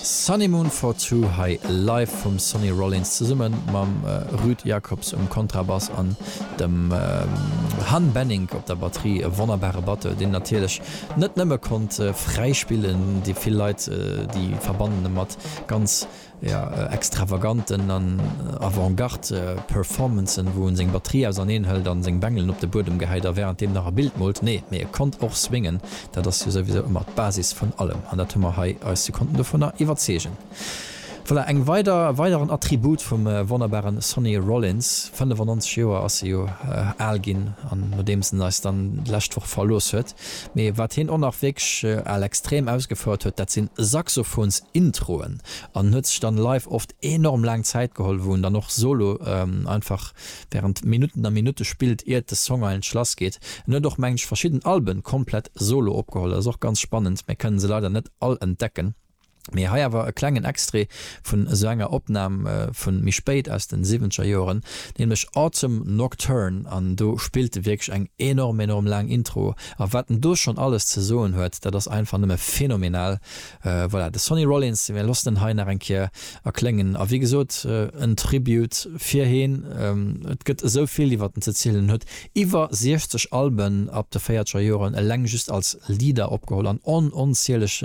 Sunny Moon for Two hei live vum Sonny Rollins zesummen mam Ruud Jacobs um Kontrabass an dem Han Benink op der Batterie. E wonnerbare Batteur, deen natierlech net nëmme konnt fräi spillen, déi vill Leit déi verbannen e mat ganz jo, extravaganten an Avant-Garde Performancen, wou en seng Batterie auserneen hëlt an seng Bengelen op de Buedem gehäit a währenddeem nach e Bild moolt. Nee, mee e konnt och swingen, dat ass jo souwisou ëmmer d'Basis vun allem an dat hu mer hei eis, si konnten dovunner iwwerzeegen. Voilà, eng weider, e weideren Attribut vum wonnerbaren Sonny Rollins. 95 Joer ass se jo al ginn an nodeems en eis dann d'lescht Woch verlooss huet. Mee wat hien och nach wierklech al extrem ausgefouert huet, dat sinn Saxophons-Introen an en huet sech dann live oft enorm laang Zäit geholl, wou en dann och solo einfach während Minutten a Minutte spillt iert de Song eigentlech lass geet. En huet och, mengen ech, verschidden Alben komplett solo opgeholl, dat ass och ganz spannend, mä kënnen se leider net all entdecken. Mee hei awer e klengen Extrait vun esou enger Opnam vun méi spéit aus den siwwenzeger Joeren, nämlech Autumn Nocturne an do spillt e wierklech eng enorm enorm laang Intro a wat en do schonn alles ze soen huet, dat ass einfach nëmme phänomenal. Voilà, de Sonny Rollins, mir loossen en hei nach eng Kéier erkléngen a wéi gesot en Tribute fir heen, et gëtt esou vill iwwert en ze zielen, en huet Iwwer 60 Alben ab de véierzeger Joren eleng just als Leader opgeholl an on onzieleg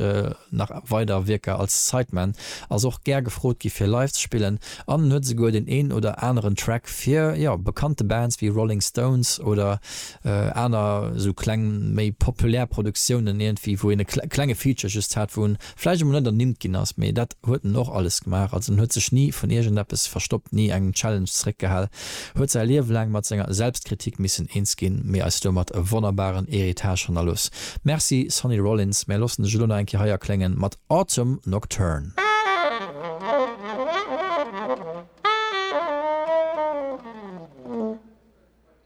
nach weider Wierker als Sideman, ass och gär gefrot gi fir live ze spillen an en huet esouguer den een oder aneren Track fir jo bekannte Bands wéi Rolling Stones oder aner esou kleng méi populär Produktiounen iergendwéi wou een e klenge Feature just hat wou en vläicht emol net ernimmt ginn ass, mee dat huet en och alles gemaach. Also en huet sech ni vun iergendeppes verstoppt, ni engem Challenge zeréckgehal, huet säi Liewe laang mat senger Selbstkritik missen eens ginn, mee eis domat e wonnerbaren Héritage hannerlooss. Merci Sonny Rollins, mär loossen dech elo nach eng Kéier hei erkléngen mat Autumn Nocturne.